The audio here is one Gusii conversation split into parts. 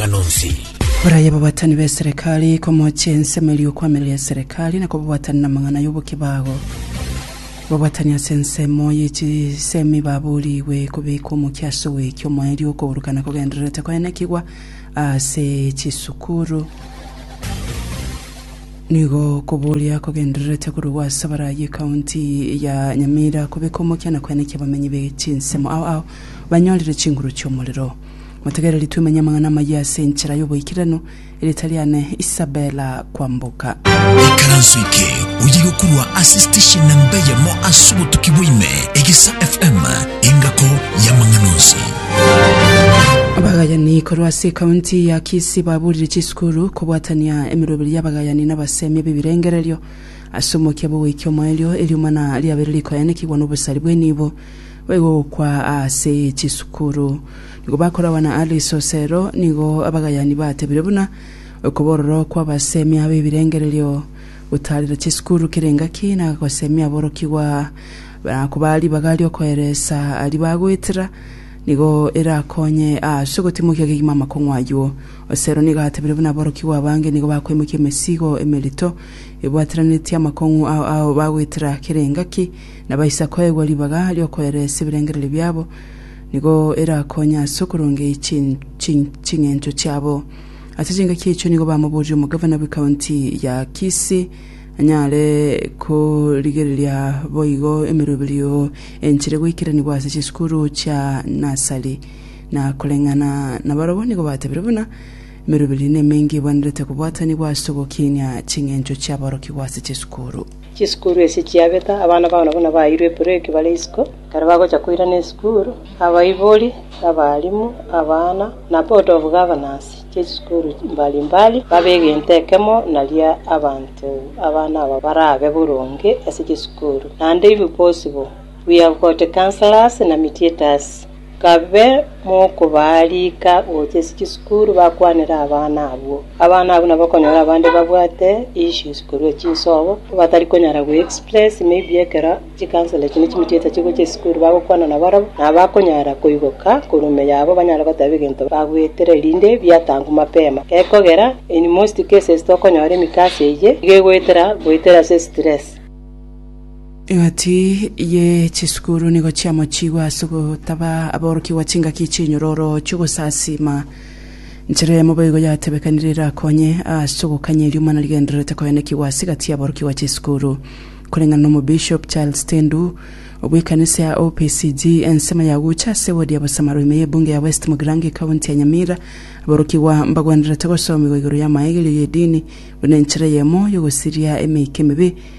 amang'ana onsi. Baraye ababatani b'eserekari komochia ensemo eria okoamerera eserekari na kobabatana namang'ana y'obokibago. Babatani ase ensemo y'echisemi baboorigwe kobeka omokia ase ogoikia omoerio okourukana kogendererete koenekigwa ase chisukuru. Nigo koboria kogendererete korugwa ase abarayi ekaunti ya Nyamira kobeka omokia na koenekia abamenyi be chinsemo ao ao banyorire chinguru chi'omorero. Motegereri twemenye amang'ana amayia ase enchera y'oboikeranu, erieta riane Isabella Kwamboka. Ikaranso eke oye gokurwa ase station namba eyemo ase obotuki bwaime, Egesa FM, engako y'amang'ana onsi. Abagayani korwa ase ekaunti ya Kisii baburire chisukuru kobwatania emeroberi y'abagayani na abasemi b'ebirengererio ase omokia bw'ogoikia omoerio, eriomana riabeire rikoyanekigwa n'obosari bw'enibo. Baigwa ogokwa ase chisukuru. Nigo bakoragwa na Alice Osero, nigo abagayani batebire buna okobororo kw'abasemi abe ebirengererio gotaarera chisukuru kere engaki na gosemi aborokigwa na koba ribaga riokoeresa aria bagoetera nigo erakonye ase ogotimokia kegima amakong'u ayio. Osero nigo atebire buna aborokigwa abange nigo bakoimokia emesigo emerito ebwateranetie amakong'u ao ao bagoetera kere engaki na baisa koegwa ribaga ri'okoereresia ebirengererio biabo, nigo erakonye ase okorongeria ching'encho chiabo. Ase chingaki echo nigo bamoborie omogavana bwe county ya Kisii anyare korigereria boigo emeroberio enchire goikeranigwa ase chisukuru chia nursery. Na koreng'ana nabarabwo nigo batebirie buna emeroberio nemenge ebwenerete kobwatanigwa ase ogokinia ching'encho chiaborokigwa ase chisukuru. Chisukuru echi chiabeta, abana bao nabwo nabaeirwe ebureki bare isiko. Ekero bagocha koirana esukuru, abaibori, abalimu, abana, na Board of Governors ch'echisukuru mbari mbari babe egento ekemo naria abanto abana aba barabe boronge ase chisukuru. Naende ibo bos'bo, we have got counsellors na mediators. Kabe mokobaarika gocha chisukuru bakwanere abana abwo. Abana abwo nabakonyora abande babwate issues korwa chinsobo, batari konyara go express may be ekero chikansoro echi nechimitiete chigocha esukuru bagokwana nabarabwo, nabo bakonyara koigoka korwa ime yabo banyare goteba egento bagwetire erinde biatangwa mapema. Gekogera in most cases tokonyora emikasa eye iga egoetera goetera ase stress. Egati ye chisukuru nigo chiamochigwe ase ogotaba aborokigwa chingaki chinyororo chi'ogosasiima. Nchera eyemo boigo yatebekanire erakonye ase ogokanya erio omwana rigendererete koenekigwa ase egati y'aborokigwa chisukuru. Koreng'ana n'Omobishop Charles Tendu obw'ekanisa ya OPCG, ensemo ya gocha ase ewodi ya Bosamaro ime y'ebunge ya West Mugirango ekaunti ya Nyamira, aborokigwa mbagwenerete gosomigwa igoro y'amaegerio y'edini buna enchera eyemo y'ogosiria emeika emebe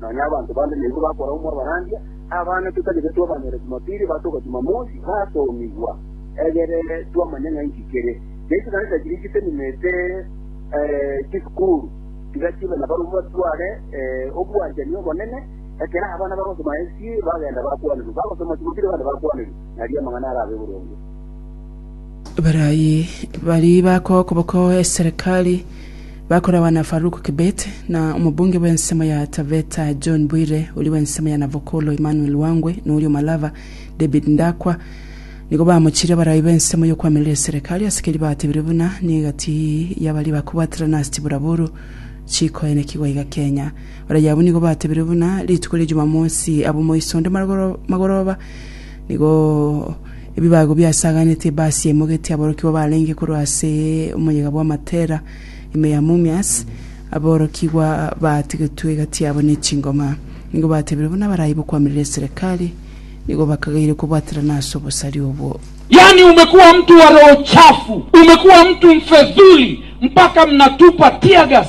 Nonya abanto bande nigo bakora omwabarandia, abana totagete twabanyora Jumapili, batoka Jumamosi, batomigwa. Egere twamanye ng'a inki kere. Ne chikanisa chiria chitenemete chisukuru, tiga chibe na barabwo batware obwanchani obonene, ekero abana bagosoma SC bagenda bakwanerwa, bagosoma Jumapili abande bakwanerwa, nario amang'ana arabe boronge. Barayi baria bakoa okoboko eserekari. Bakoragwa na Farouk Kibet na omobunge bw'ensemo ya Taveta John Bwire, oria bw'ensemo ya Navokolo Emmanuel Wangwe na oria o Malava David Ndakwa nigo bamochirie abarai b'ensemo y'okwamireria eserekari ase keria batebirie buna negati y'abaria bakobwaterana ase chiburaburu chikoenekigwa iga Kenya. Abarai abwo nigo batebirie buna rituko ria Jumamosi abwo moiso onde magoroba Nigo ebibago biasaganetie basiaimogetie aborokigwa barenge korwa ase omoyega bwa Matera, ime ya Mumias, aborokigwa batigetwe egati yabo ne chingoma. Nigo batebire buna barai bokwamiria eserekari, nigo bakagaire kobwaterana ase obosari obwo. Yaani umekuwa mtu wa roho chafu, umekuwa mtu mfedhuli mpaka mnatupa teargas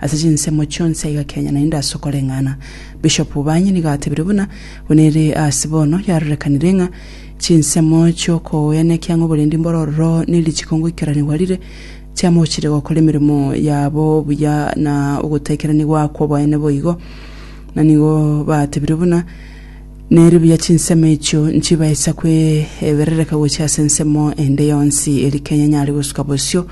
Ase chinsemo chionsi aiga Kenya naende ase okoreng'ana, Bishop Banyi nigo atebire buna, Buna ere ase bono yarorekanire ng'a chinsemo chi'okoenekia ng'a oborendi mbore ororo ne richiko ngoikeranigwa rire, chiamochire gokora emeremo yabo buya na ogotaikeraniwa kw'oboene boigo. Na nigo batebire buna, Nere buya chinsemo echio nchibaisa kw'eberereka gochia ase ensemo ende yonsi, eri Kenya nyare gosuka bosio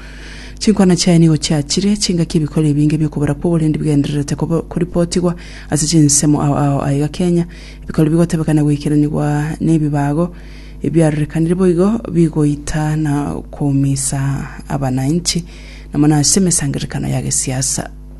Chinkwana chiaye nigo chiachire, chingaki ebikori ebinge bi'okobora kw'oborendi bigendererete koripotigwa ase chinsemo ao ao aiga Kenya, ebikori bigotebeka na goikeranigwa nebibago ebiarorekanire boigo bigoita na koumisa abananchi nomo nase emesangererekano ya gesiasa.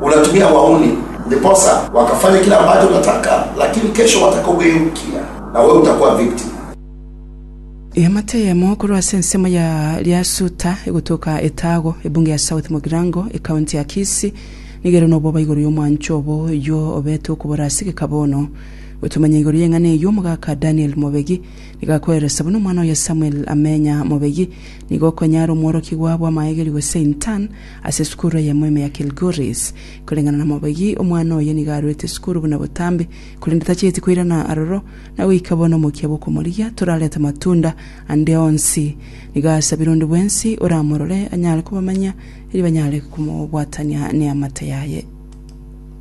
Unatumia wauni ndiposa wakafanya kile ambacho unataka lakini kesho watakugeukia na wewe utakuwa victim. Eamate eyemo korwa ase ensemo ya Lyasuta egotoka Etago, ebunge ya South Mugirango, ekaunti ya Kisii, nigo ere nobwoba igoro y'omwancho obo oyio obete okobora ase gekaba ono. Gotomanya igoro y'eng'ana eyio omogaka Daniel Mobegi nigo akoeresa buna omwana oye Samuel Amenya Mobegi nigo okonyara omworokigwa bw'amaegeri gose intern Ase esukuru eyemo ime ya Kilgoris, koreng'ana na mobegi, omwana oye nigo aruete esukuru buna botambe, korende tacheti koirana aroro, na goika bono omokia bw'okomorigia torarete amatunda ande onsi. Nigo asabire onde bwensi oramorore anyare kobamanya, erio banyare komobwatania neamate yaye.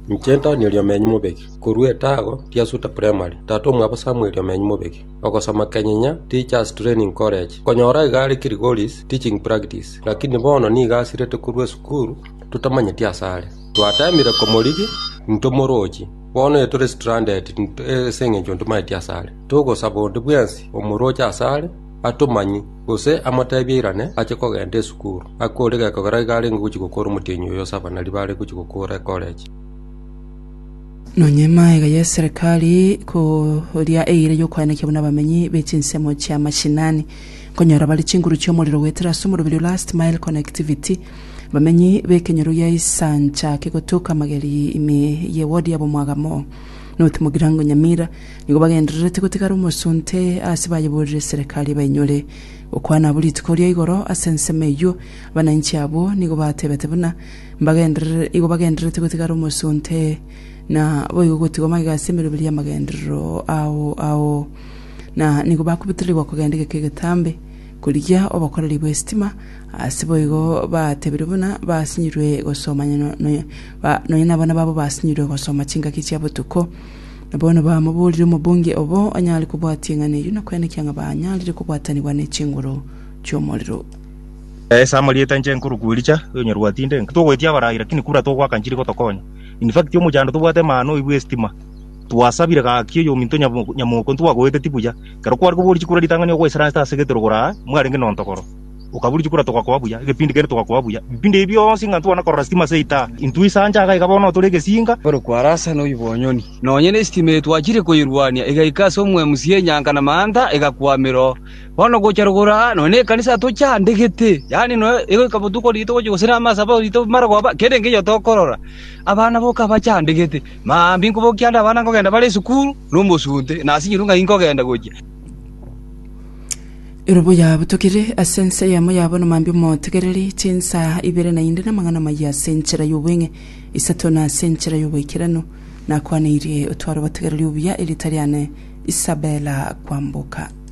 Inche Antonio Riomenyo Mobegi, korwa etago Tiasuta Primary, tata omwabo Samuel Riomenyo Mobegi. Ogosoma kenyenya Teachers Training College. Nkonyora iga are Kilgoris teaching practice, lakini bono nigo asirete korwa esukuru totamanyeti asare. Twatemire komorigi intwe morochi, bono ere tore stranded ase engencho ntomanyeti asare. Togosaba onde bwensi omoroche asare atomanyie gose amoteebie airane ache kogenda esukuru. Ake ore gekogera iga arenge gochi gokora omotienyi oyo Savannah riba are gochi gokora ecollege. Nonya emaaega y'eserekari koria eira y'okoenekia buna abamenyi be chinsemo chia mashinani, nkonyora bare chinguru chi'omorero goetera ase omoroberi o Last Mile Connectivity, abamenyi b'ekenyoro gia Isancha kegotoka Mageri ime ye ward ya Bomwagamo, North Mugirango Nyamira, nigo bagendererete gotigara omosunte ase bayeborire eserekari ebainyore. Gokwana abwo rituko ria igoro ase ensemo eyio, abananchi abwo nigo batebete buna, Mbagenderere, igo bagendererete gotigara omosonte, na boigo gotigwa magega ase emeroberio y'amagenderero ao ao. Na nigo bakobutererigwa kogenda egeka egetambe, korigia obokoreri bw'esitima, ase boigo bateebirwe buna basinyirwe gosoma onye no- no- ba- nonya nabana babo basinyirwe gosoma chingaki chia botuko. Na bono bamoboorire omobunge obo onyare kobwatia eng'ana eyio na kwenekea ng'a banyarire kobwatanigwa ne chinguru chi'omorero. Esa amarieta inche nkorokwa Elija, oyonyarwa atinde, nki togoetia abarai, lakini kura togoaka nchiri gotokonya. In fact omochando tobwate emana oibwe estima, twasabire gaki oyominto nyabo- nyamoko ntwagoeteti buya, ekero kware koboria chikura ritang'ani ogoisera anse ase egetorogoro aa, mwarenge nontogoro. Okaboria chikura togakoa buya, egepindi kende togakoa buya. Ebipindi ebi bionsi ng'a ntwana korora sitima ase eitaha, intwe ase ancha iga bono notore egesinga, Nkorokwa Arasa noibwe onyoni. Nonye nestima eye twachire koyerwania, egaika ase omwemusi enyanka na manta, egakwamera oo. Bono gochia rogoro aa nonya nekanisa tochandegete, yaani nonya egoika botuko riito gochia gose namasaaba riito marogoba, kera engencho tokorora. Abana boka abachandegete, maambia inkobokia ande abana nkogenda bare esukuru, na omosunte, na ase enyeroka ng'ai nkogenda gochia. Ere boyaabutokire ase ense eyemo ya bono mambia omotegereri chinsa ibere naende namang'ana amayia ase enchera y'obweng'e, isato na ase enchera y'oboikeranu. Nakwaneirie otware obotegereri obuya, erieta riane Isabella Kwamboka.